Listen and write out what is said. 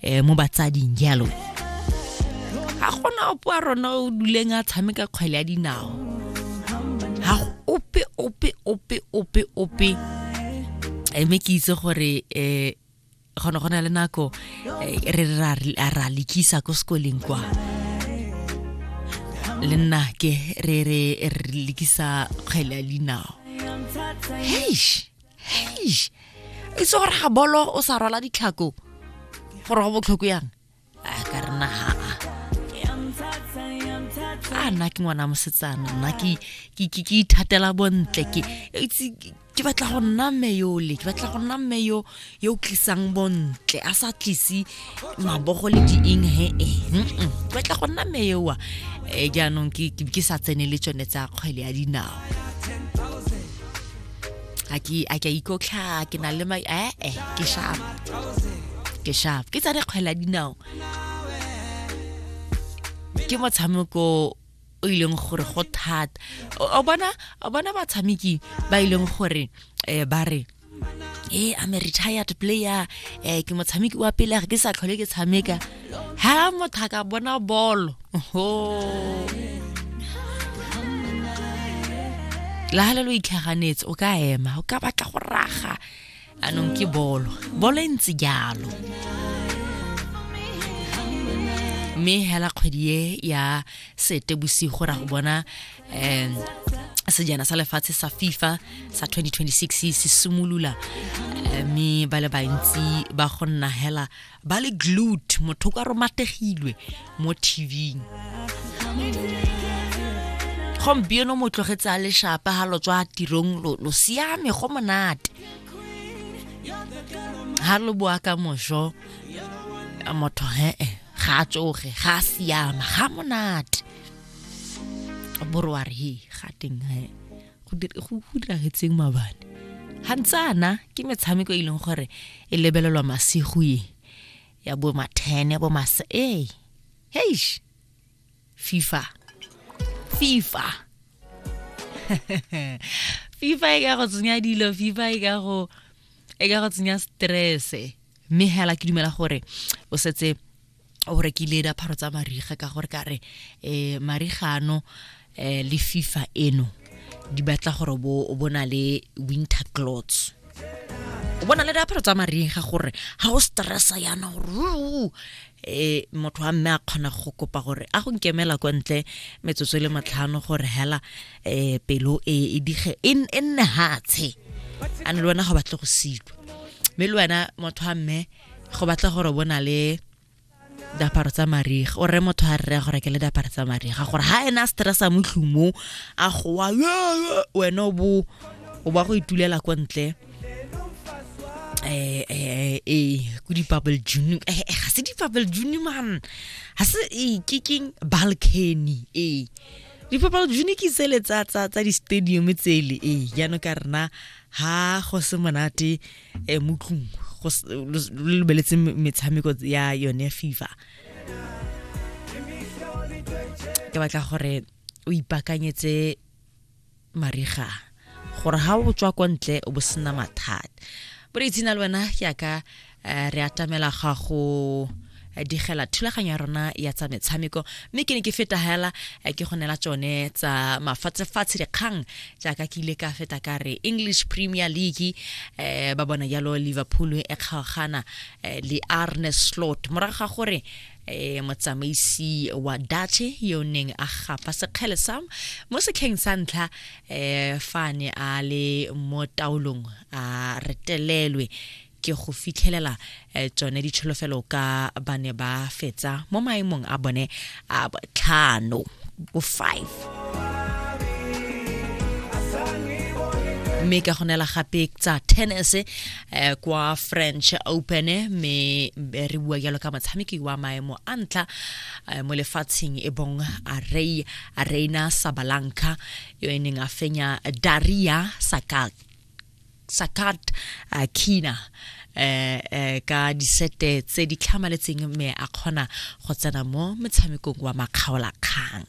eh, mo batsading jalo ga gona opo a rona o duleng a tshameka kgwele ya dinao ga ope ope ope ope ope Eh, mme ke itse gore um gone go na le nako eh, re re ra re- a ra lekisa ko sekoleng kwa le nna ke re re re lekisa kgwele ya dinao heish eish e se gore ga bolo o sa rwala ditlhako gore go botlhoko yang a ka re naga a nna ke ngwana mosetsana nna ke ithatela bontle ke ke batla go nna mme yole ke batla go nna mme yo yo tlisang bontle a sa tlise mabogo le dieng he e ke batla go nna mme yowa um jaanong ke sa tsene le tsone tsa kgwele ya dinao a ke a ke ikotlha ke na le mai eh eh ke sharp ke sharp ke tsare kgwela dinao ke motshameko o ileng gore go thata o bona o bona batshameki ba ileng gore eh ba re e eh, I'm a retired player eh ke motshameki wa pele ke sa tlhole ke tshameka ha motho a ka bona bolo la ha le lo itlhaganetse o ka ema o ka batla go raga anong ke bolo bolo e ntse jalo mme hela kgwedi e ya sete bosigo ra go bona um sejana sa lefatshe sa fifa sa 2026 se simolola eh, mme ba le bantsi ba go nna hela ba le glute motho ka romategilwe mo tvng gompieno mo tlogetse a leshapa ga lo tswa tirong lo siame go monate ga lo boa ka moso motho hee eh, ga a tsoge ga a siama ga monate boroare he ga teng he go diragetseng mabane ga ntsana ke metshameko e leng gore e lebelelwa masigo e ya bo mathene bo masa ee heish fifa fifa fifa e ka go tsenya dilo fifa e ka go e ka go tsenya stresse mme hela ke dumela gore o setse o rekile diaparo tsa mariga ka gore ka re um marigano um le fifa eno di batla gore o bona le winter clots o bona le diaparo tsa mariga gore ga o stressa yana gore e motho wa mme a kgona go kopa gore a go nkemela kwa ntle metsotso e le matlhano gore hela um pelo e, e dige e, e nne hatshe a ne le wena go batle go silwa mme le wena motho wa mme go batla gore bo na le diaparo tsa mariga o rre motho a rre go rekele diaparo tsa mariga gore ha ena a stressa mo tlhong mo a gowa wena o bo o ba go itulela kwa ntle eh eh eh ku di bubble june eh, eh ga se di bubble june man ga se eh ke keng balcony eh di bubble june ke tsele tsa tsa tsa di stadium tsele eh jaanong ka rena ha go se monate eh motlung go lebeletse metshameko ya yone fifa ke batla gore o ipakanyetse mariga gore ha o tswa kwa ntle o bo sena mathata bore itsina le wena ke yaka eh, re atamela ga go eh, digela thulaganyo ya rona ya tsa metshameko mme ke ne ke feta hela eh, ke go neela tsone tsa mafatshefatshe dikgang jaaka ke ile ka feta ka re english premier league eh, ba bona jalo liverpool e kgaogana eh, le arne slot morago ga gore eh motsamaisi wa dache yo neng a gapa sekgele sa mo sekheng sa ntlha eh fa ne a le mo taolong a retelelwe ke go fitlhelela eh, tsone ditšholofelo ka ba ne ba fetsa mo maemong a bone a botlhano bo five mme ka go nela gape tsa tennis eh, kwa french open mme re bua jalo ka motshameki wa maemo a ntlha eh, mo lefatsheng e bong arei areina sabalanka yo e neng a fenya daria sakat sakat uh, kina eh eh ka disete tse di tlhamaletseng mme a kgona go tsena mo metshamekong wa makgaolakgang